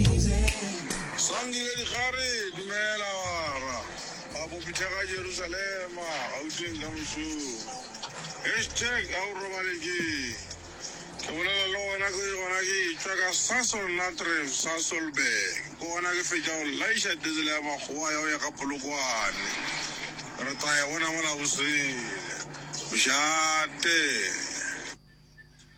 Sandile Dikgare, Dumela Bara ba Bopithega Jerusalema Gauteng ka mošomo Hashtag ga o robale ke Ke bolela le gona ke gona ke tšwa ka Sasol Natref Sasolburg Ke gona ke fetša go laiša diesel ya makgowa ya go ya ka Polokwane Re tla e bona mola bosele Mošate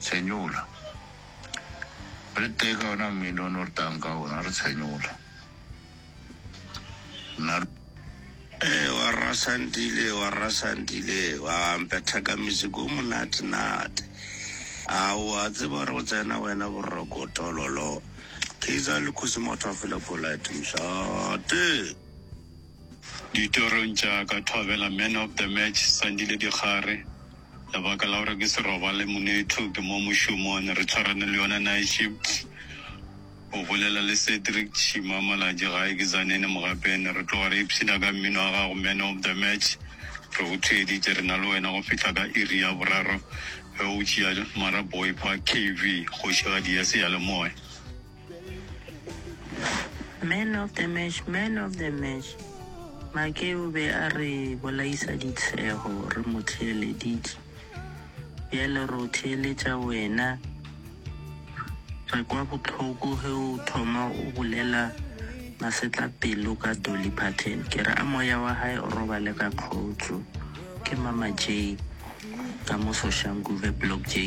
Tshenyola. O le tee ka ona mmino o ne o re tang ka ona, re tshenyola. Nna. Ee, wa rra Sandile, wa rra Sandile, wa mpetha ka music o monate-nate. A wa tseba gore go tsena wena boroko tololo. Kaizer le Kgosi Motho a fela polite, mošate. Ditorong tša ka thwabela man of the match Sandile Dikgare lebaka la gore ke se robale Monetho ke mo mošomon re tshwarane le yona night shift O bolela le Cedric Tšhima malatši gae ke Zanene Mogapene re tloga re ipshina ka mmino wa gago man of the match Re go theeditše re na le wena go fihla ka iri ya boraro ge o tšea Mara Boy Park KV kgošigadi ya seyalemoya. Man of the match, man of the match. Make o be a re bolaisa ditshego, re mo theeleditše. Bjale re o theeletša wena. Re kwa bohloko ge o thoma o bolela masetla pelo ka Dolly Parton. Ke re a moya wa gae o robale ka kgotso. Ke Mama J ka mo Soshanguve Block J.